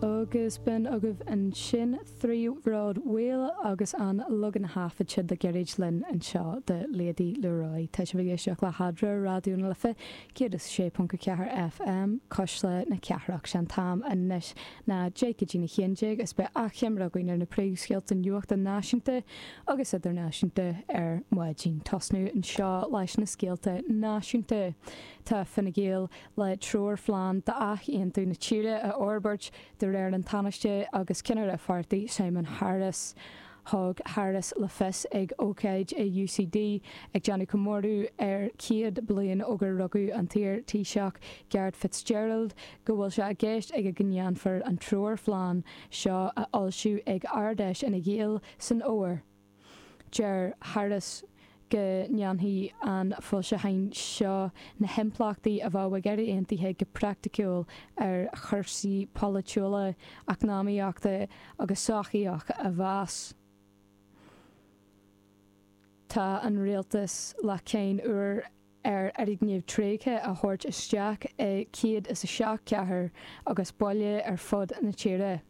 Agus b'in agaibh ansin trí bhród Mhaoil agus an leagan a thaifead siad le gairid linn anseo de Lady Leroy. Tá sibh ag éisteacht le hEadra, Raidió na Life 106.4 FM, Cuisle na Cathrach. Sé an t-am anois ná deich go dtí na haon déag is beidh achoimre againn ar na príomhscéalta nuachta náisiúnta agus idirnáisiúnta ar maidin. Tosnú anseo leis na scéalta náisiúnta. Tá Fine Gael le treoirphlean d'athaontú na tíre a fhorbairt, de réir an Tánaiste agus ceannaire an pháirtí, Simon Harris. Thug Harris le fios ag ócáid i UCD ag déanamh comóradh ar 100 bliain ó gur rugadh an t-iar Taoiseach Garret Fitzgerald go bhfuil sé i gceist aige go ndéanfar an treoirphlean seo a fhoilsiú ag Ard-Fheis Fhine Gael san fhómhar. Deir Harris go ndéanfaidh an foilseachán seo na himpleachtaí a bheadh ag Éire Aontaithe go praiticiúil ar chúrsaí polaitiúla, eacnamaíochta agus sochaíocha a mheas. Tá an rialtas le cáin úr. ar fhoirgnimh thréigthe a thabhairt isteach i céad is a seacht gcathair agus baile ar fud na tíre.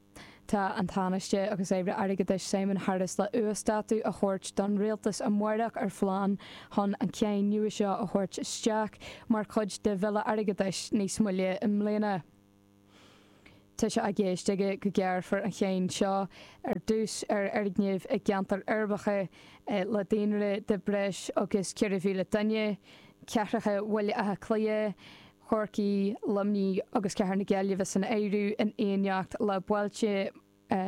Tá an Tánaiste agus Aire Airgeadais Simon Harris le uasdátú a thabhairt don rialtas amáireach ar phlean chun an cháin nua seo a thabhairt isteach mar chuid de Bhille Airgeadais níos moille i mbliana. Tá sé i gceist aige go gearrfar an cháin seo ar dtús ar fhoirgnimh i gceantair uirbeacha le daonra de breis agus 4,000 duine, cathracha Bhaile Átha Cliath, Chorcaí, Luimnigh agus Cathair na Gaillimhe san áireamh, in éineacht le bailte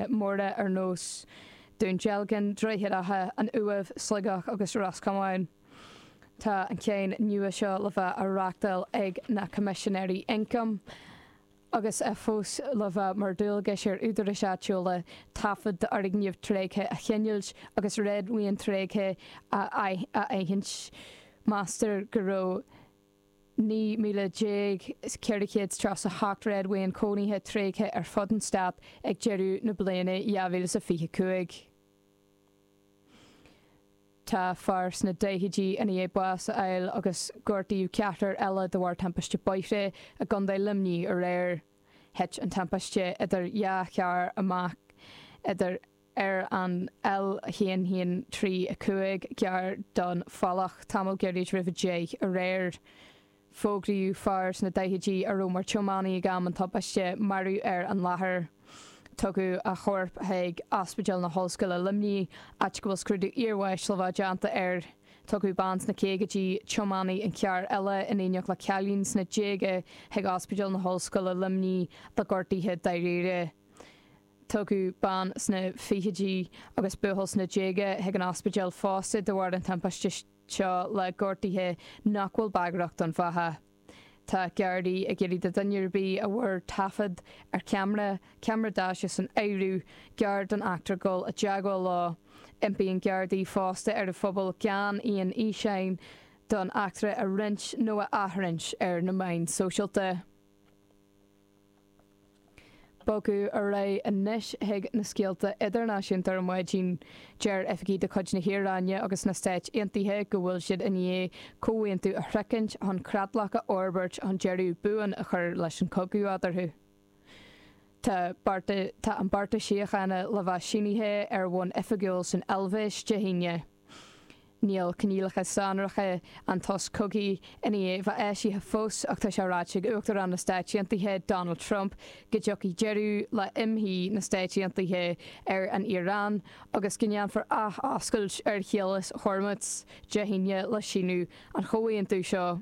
móra ar nós Dún Dealgan, Droichead Átha, an Uaimh, Sligeach agus Ros Comáin. Tá an cháin nua seo le bheith á reachtáil ag na Coimisinéirí Ioncaim agus é fós le bheith mar dhualgas ar údaráis áitiúla taifead d'fhoirgnimh thréigthe a choinneáilt agus réadmhaoin thréigthe a aithint. Meastar go raibh. 19437 réadmhaoin chónaithe tréigthe ar fud an Stát ag deireadh na bliana 2025. Tá fear sna daichidí i ndiaidh bás a fháil agus gortaíodh ceathrar eile de bharr timpiste bóithre i gContae Luimnigh aréir. Thit an timpiste idir dhá charr amach idir. ar an L1135 gar don Phollach. Tamall gairid roimh a deich aréir, fógraíodh an fear sna daichidí a raibh mar tiománaí ag am an tubaiste maraíodh ar an láthair. Tugadh a chorp chuig Ospidéal na hOllscoile Luimnigh, áit go bhfuil scrúdú iarbháis le bheith déanta air. Tugadh bean sna caogaidí, tiománaí an chairr eile, in éineacht le cailín sna déaga chuig Ospidéal na hOllscoile Luimnigh le gortuithe dáiríre. Tugadh bean sna fichidí agus buachaill sna déaga chuig an ospidéal fosta de bharr an timpiste seo le gortuithe nach bhfuil bagrach don bheatha. Tá Gardaí ag iarraidh do dhuine ar bith a bhfuair taifead ar cheamara, ceamara daise san áireamh, gar don eachtra dul i dteagmháil leo. Impíonn Gardaí fosta ar an phobal gan aon fhíseán den eachtra a roinnt nó a athroinnt ar na meáin sóisialta. Ag bogadh ar aghaidh anois chuig na scéalta idirnáisiúnta ar maidin. Deir oifigigh de chuid na hIaráine agus na Stáit Aontaithe go bhfuil siad i ndiaidh comhaontú a shroichint chun creatlach a fhorbairt chun deireadh buan a chur leis an gcogadh eadarthu. Tá an beartas síochána le bheith sínithe ar bhonn oifigiúil san Eilvéis Dé hAoine. Níl coinníollacha sonracha an tsosa cogaidh i ndiaidh a bheith eisithe fós ach tá sé ráite ag Uachtarán na Stáit Aontaithe Donald Trump go dtiocfaidh deireadh le himshuí na Stáit Aontaithe ar an Iaráin agus go ndéanfar athoscailt ar Chaolas Hormuz Dé hAoine le síniú an chomhaontú seo.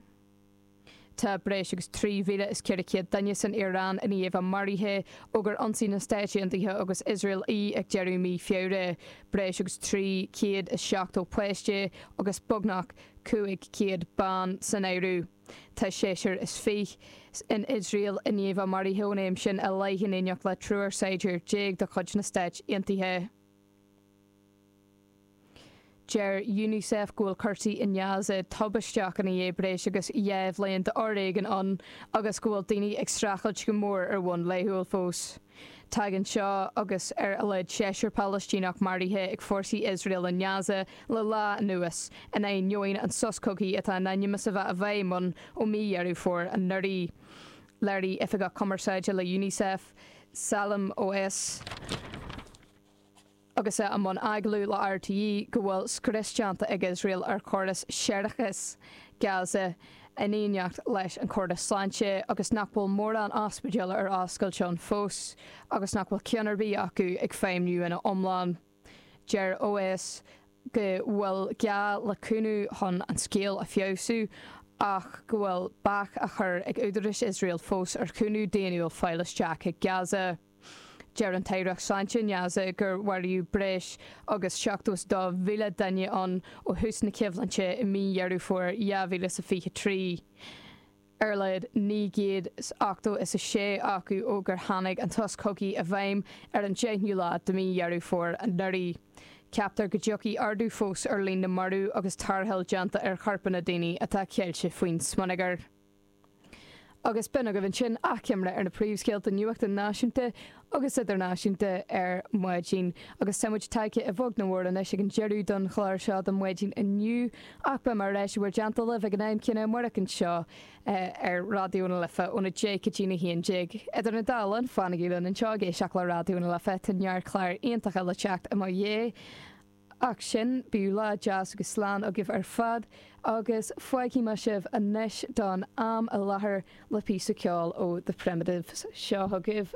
Tá breis agus 3,400 duine san Iaráin i ndiaidh a bheith maraithe ó gur ionsaigh na Stáit Aontaithe agus Iosrael í ag deireadh mí Feabhra. Breis agus 370 páiste agus beagnach 500 bean san áireamh. Tá seisear is fiche in Iosrael i ndiaidh a bheith maraithe ón am sin i leith in éineacht le triúr saighdiúir déag de chuid na Stáit Aontaithe. Deir Unicef go bhfuil cúrsaí in Gaza tubaisteach i ndiaidh breis agus dhá bhliain d'fhoréigean ann agus go bhfuil daoine ag streachailt go mór ar bhonn laethúil fós. Tagann seo agus ar a laghad seisear Palaistíneach maraithe ag fórsaí Iosrael in Gaza le lá anuas, in ainneoin an sos cogaidh atá in ainm is a bheith i bhfeidhm ann ó mhí Dheireadh Fómhair anuraidh. Léirigh Oifigeach Cumarsáide le Unicef, Salim Oweis, Agus é i mbun agallaimh le RTÉ go bhfuil scrios déanta ag Iosrael ar chóras séarachais Gaza in éineacht leis an chóras sláinte agus nach bhfuil mórán ospidéal ar oscailt ann fós agus nach bhfuil ceann ar bith acu ag feidhmniú ina iomlán. Deir Oweis go bhfuil gá le cúnamh chun an scéal a fheabhsú ach go bhfuil bac á chur ag údaráis Iosrael fós ar chúnamh daonnúil fáil isteach go Gaza. Deir an Aireacht Sláinte i nGaza gur mharaíodh breis agus 72,000 duine ann ó thús na coimhlinte i mí Dheireadh Fómhair 2023, ar a laghad 986 acu ó gur tháinig an sos cogaidh i bhfeidhm ar an 10ú lá de mhí Dheireadh Fómhair anuraidh. Ceaptar go dtiocfaidh ardú fós ar líon na marbh agus tarrtháil déanta ar chorpáin daoine atá ceilte faoin smionagar. Agus b'in agaibh ansin achoimre ar na príomhscéalta nuachta náisiúnta agus idirnáisiúnta ar maidin. Agus tá muid tagtha i bhfogas go mór anois ag an deireadh don chlár seo don mhaidin inniu, ach beidh mé ar ais in bhur dteannta libh ag an am céanna amárach anseo ar Raidió na Life óna deich go dtína haon déag. Idir na dá linn, fanaigí linn anseo ag éisteacht le Raidió na Life, tá neart cláir iontacha le teacht i mo dhiaidh. Ach sin, bíodh lá deas agus slán agaibh ar fad agus fágfaidh mé sibh anois don am i láthair le píosa ceoil ó The Primitives. Seo chugaibh.